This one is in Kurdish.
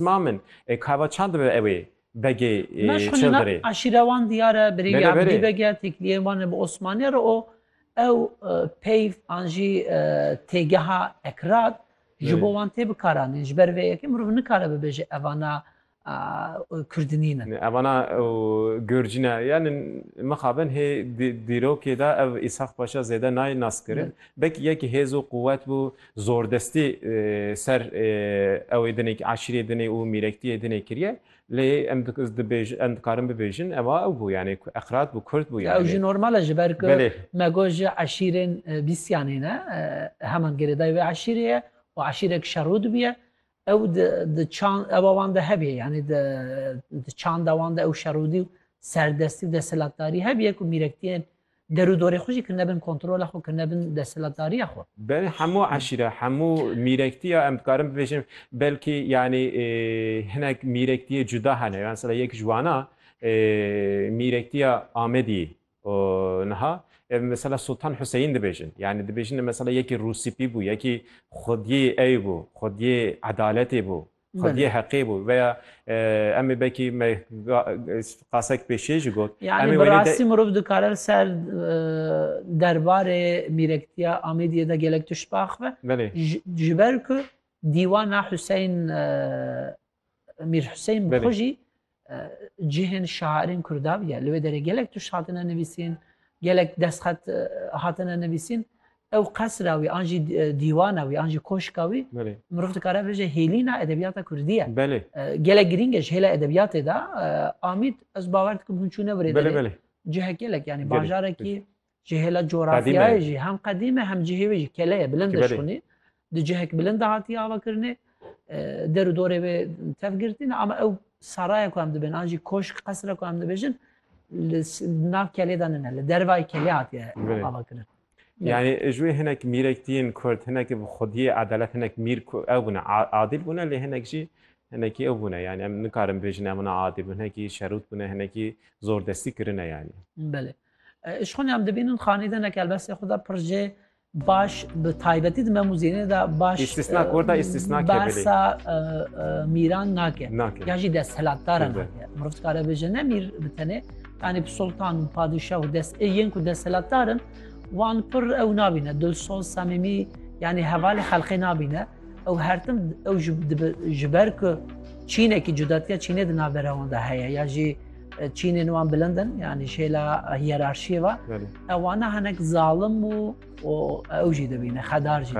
Ma min e, kava çand dibe ew ê begê Ma ji xwînîna Çildirê. eşîra wan diyar e, birêvî Bele, Ebdî bele. Beg e, têkiliyên wan e bi Osmanî re û ew e, peyv an jî e, têgeha ekrad ji Belê. bo wan tê bikaranîn. Ji ber vê yekê mirov nikare bibêje evana e, Kurd nîn in. Evana ew Gurcî ne. Yanî mixabin hê dî- dîrokê de ev Îshak Paşa zêde nayê naskirin. Belkî yekî hêz û quwet bû zordestî ser ew ê dinê eşîrê dinê û mîrektiyê dinê kiriye lê em dibêjin em dikarin bibêjin ewa ew bû yani eqrat bû kurd bû yani. Ew jî normal e ji ber ku me got ji eşîrên bîsyanê ne heman girêdayî wê eşîrê ye û eşîrek şerû dibiye Ew di di çand ewa wan de hebîye yanî di di çanda wan de ew şerûdî û serdestî û desthilatdarî hebîye ku mîrektiyên derû dorê xwe jî kirine bin kontrola xwe, kirine bin desthilatdariya xwe. Belê hemû eşîra, hemû mîrektiya em dikarin bibêjin belkî yanî hinek mîrektiyê cuda hene. Mesela yek ji wan a mîrektiya Amediyê. û niha ev mesela Sultan Huseyîn dibêjin. Yanî dibêjin ev mesela yekî rûsîpî bû, yekî xwediyê ey bû, xwediyê edaletê bû, xwediyê heqê bû veya em ê belkî me qasek pêşê jî got. Yanî bi rastî mirov dikare li ser derbarê mîrektiya Amêdiyê de gelek tişt biaxive. Belê. Ji ber ku dîwana Huseyîn Mîr Huseyîn bi xwe jî cihên şairên Kurdav ye. Li wê derê gelek tuş hatine nivîsîn, gelek destxet hatine nivîsîn. Ew qesra wî an jî dîwana wî an jî koşka wî mirov dikare bibêje hêlîna edebiyata Kurdî ye. Gelek girîng e ji hêla edebiyatê de. Amîd ez bawer dikim hûn çûne virê derê. Cihek gelek yanî bajarekî Ji hêla cografyayê jî hem qedîm e hem cihê wê jî kele ye, bilind e şûnê. Di cihek bilind de hatiye avakirinê. Der û dorê wê tev girtî ne ama ew saraya ku em dibêjin an jî koşk qesira ku em dibêjin li nav kelê de nine li dervayê kelê hatiye avakirin. Yani ji wê hinek mîrek tîn kurd hinekî bi xwediyê edelet hinek mîr ku ew bûne adîl bûne lê hinek jî hinekî ew bûne yani em nikarin bêjin em na adîl bûn hinekî şerût bûne hinekî zordestî kirine yani. Belê. Îşxûnê em dibînin xanî de ne kelbestê xwe de pir jê baş bi taybetî di me muzînê de baş Îstîsna korda îstîsna ke bilê. Bersa mîran nake. Ya jî desthilatdar e nake. Mirov dikare bêje ne mîr bi tenê. Yani bi sultan û padîşah û dest ê yên ku desthilatdar in wan pir ew nabîne dilsoz semîmî yani hevalê xelqê nabîne. Ew her tim ew ji ber ku çînekî cudatiya çînê di navbera wan de heye ya jî Çînên wan bilind in yanî şêla hiyerarşiyê ve ew wana hinek zalim û ew jî dibîne xedar jî.